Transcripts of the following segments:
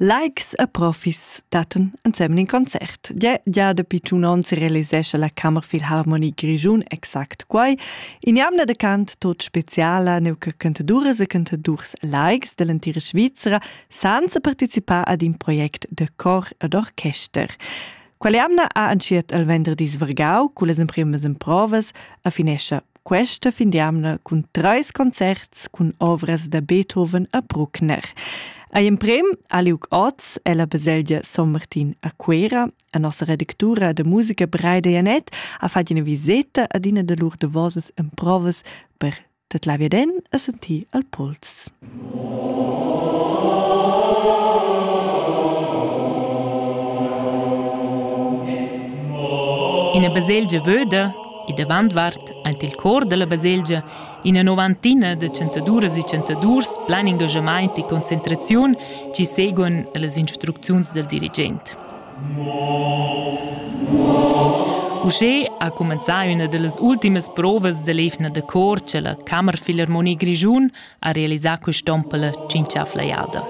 Likes e profis dattan ensemen in concert. Gia dapi tschun onns realisescha la Kammerfilharmonie Grischun exact quai. In jamna de cant tot speciala neu che cantaduras e cantadurs likes dell'entira Svizzera senza participar ad in project de cor ed orchester. Quella jamna ha entschiet il venderdis vargau, con las emprimas emprovas, affinescha Questa fin d'jamna cun treis concerts cun ovras da Beethoven a Bruckner. A emprem ha liug oz ella baselgia Son Martin a Cuera. A nossa redactura da musica Breide Janet ha fatg ina viseta ad ina da lur davosas emprovas per tut la viden a sentir al pols. Ina baselgia vöda e davant vart aint il cor dalla baselgia ina novantina da chantaduras e chantadurs plan engagamaint e concentraziun chi seguon las instrucziuns dal dirigent. Uschè ha cumenzà üna da las ultimas provas da l'eivna da cor cha la Kammerphilharmonie Grischun ha realisà quist'on per la tschinchà flajada.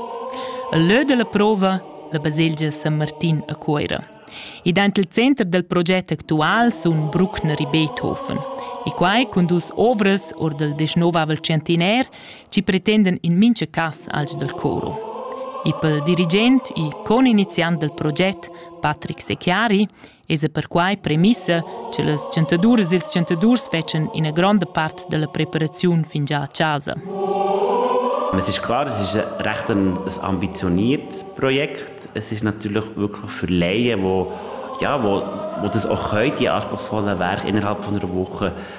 Il lö da la prova, la baselgia San Martin a Cuoira. E dent il center del proget actual sun Bruckner e Beethoven. E quai cun dus ovras or del dixnovavel centenaire ci pretenden in mincha cas alch del coro. E pel dirigent e con iniziant del proget Patrick Secchiari esa perquai premissa cha las chantaduras e'ls chantadurs fetschan üna gronda part da la preparaziun fingià a chasa. Es ist klar, es ist recht ein, ein ambitioniertes Projekt. Es ist natürlich wirklich für Laien, wo, ja, wo, wo das auch können, die anspruchsvollen Werke innerhalb von einer Woche